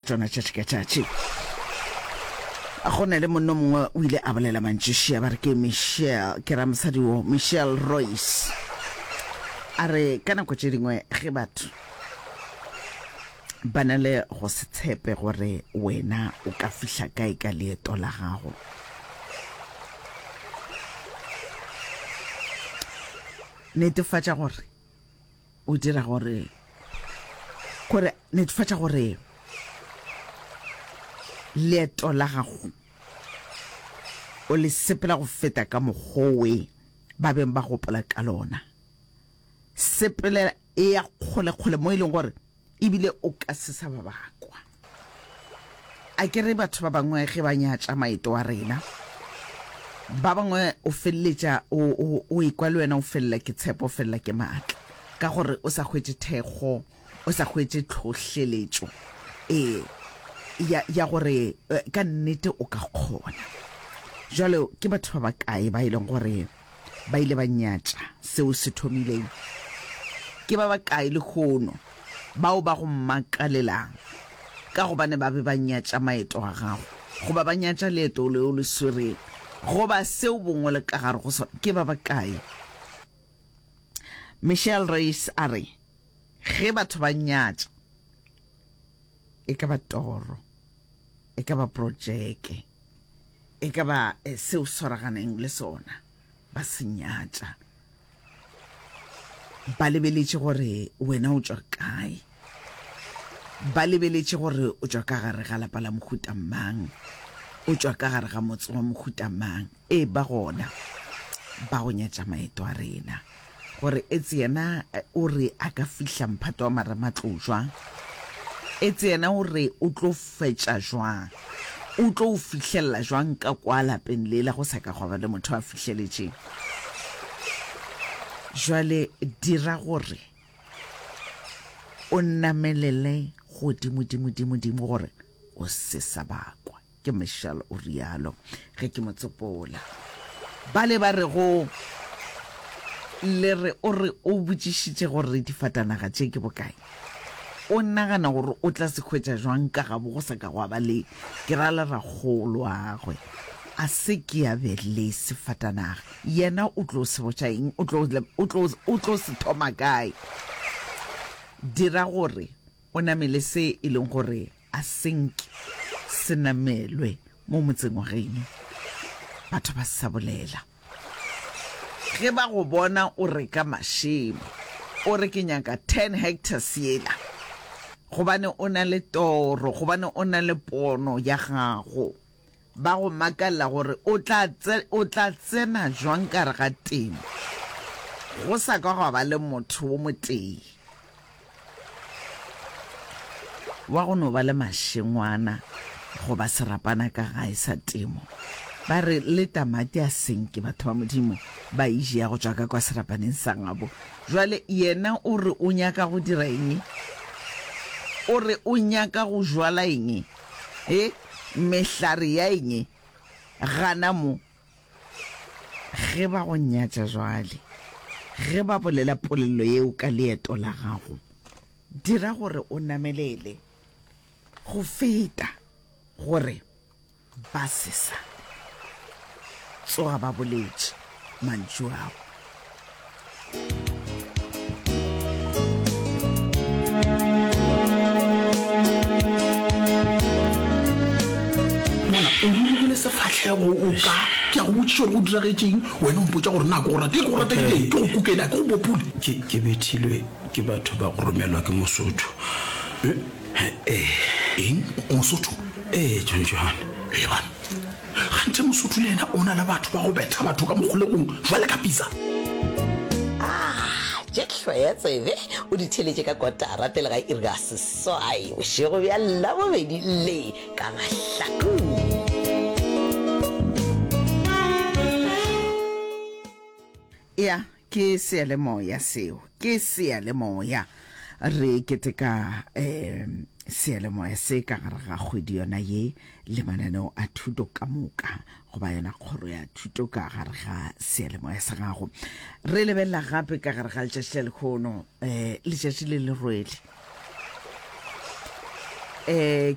Tšona tšatši ka tšatši. Go na le monno mongwe o ile a bolela mantši šea ba re ke Michelle ke ra mosadi wo Michelle Royce a re ka nako tše dingwe ge batho ba na le go se tshepe gore wena o ka fihla kae ka leeto la gago netefatša gore O dira gore, gore netefatša gore leeto la gago o le sepela go feta ka mokgowe ba beng ba gopola ka lona. Sepela e ya kgole-kgole mo e leng gore Ebile o ka se sa ba ba kwa. A ke re batho ba bangwe ge ba nyatša maeto a rena, ba bangwe o feleletša o ekwa le wena o felela ke tshepo, o felela ke maatla, ka gore o sa hwetše thekgo, o sa hwetše tlhohleletšo ee ya gore eh, ka nnete o ka kgona. Jalo ke batho ba ba kae ba e leng gore Ba ile ba nyatša seo o se thomileng. Ke ba bakae lehono bao ba go makalelang ka gobane ba be ba nyatša maeto a gago, goba ba nyatša leeto leo le swereng, goba se o bongwe le ka gare go sona? Ke ba bakae? Michelle Reis a re, Ge batho ba nyatša, E ka ba toro, e ka ba projeke, e ka ba se o swaraganeng le sona, ba se nyatša. Ba lebeletše gore wena o tšwa kae, ba lebeletše gore o tšwa ka gare ga lapa la mohuta mang, o tšwa ka gare ga motse wa mohuta mang. E ba gona ba go nyatša maeto a rena, gore etse yena o re a ka fihla mphato wa marematlou jwang, etse yena o re o tlo fetša jwang, o tlo o fihlelela jwang ka kwa lapeng lela go sa ka gwa ba le motho a fihleletšeng. Jwale dira gore o namelele godimodimodimodimo gore o se sa ba kwa. ke michelle o rialo ge ke mo tsopola ba le ba re go le re o re o botšišitše gore difatanaga tše ke bokae o nagana gore o tla se hwetša jwang ka gabo go sa ka gwa ba le ke ra le ragolo agwe a se ke ya be le sefatanaga yena o tlo se botša eng o tlo se thoma kae dira gore O namele se e leng gore a se nke se namelwe mo motseng wa gaeno. Batho ba sa bolela. Ge ba go bona o reka mašemo, o re ke nyaka ten hectares yela, gobane o na le toro, gobane o na le pono ya gago. Ba go makalela gore o tla, o tla tsena jwang ka gare ga temo go sa ka gwa ba le motho wo motee wa go no ba le mašengwana goba serapana ka gae sa temo. Ba re le tamati a senke batho ba Modimo ba e ja go tšwa ka kwa serapaneng sa gabo. Jwale yena o re o nyaka go dira eng? O re o nyaka go jwala eng? He, mehlare ya eng e? Gana mo. Ge ba go nyatša jwale, ge ba bolela polelo yeo ka leeto la gago, dira gore o namelele go feta gore ba se sa tsoga ba boletše. mantšu ao o rulegile sefatlhego o ka ke a go botsiša gore go diragetseng wena o mpotsa gore nako go rate ke go rate ke ke go kukela ke go bopule ke bethilwe ke batho ba go romelwa ke mosotho ee eh, eh. eng mosotho ee eh, john johane ebana Gantši Mosotho le yena o na le batho ba go betha batho ka mokgolegong jwale ka pitsa. Ah, tše hloya tsebe o di theletše ka kotara pele ga iri ya seswai bošego bja Labobedi le ka mahlakong. Eya, Ke seyalemoya seo. Ke seyalemoya. Re keteka um seyalemoya se ka gare ga kgwedi yona ye le mananeo a thuto ka moka goba yona kgoro ya thuto ka gare ga seyalemoya sa gago. Re lebelela gape ka gare ga letšatši la lekgono um letšatši le le rwele. Eh,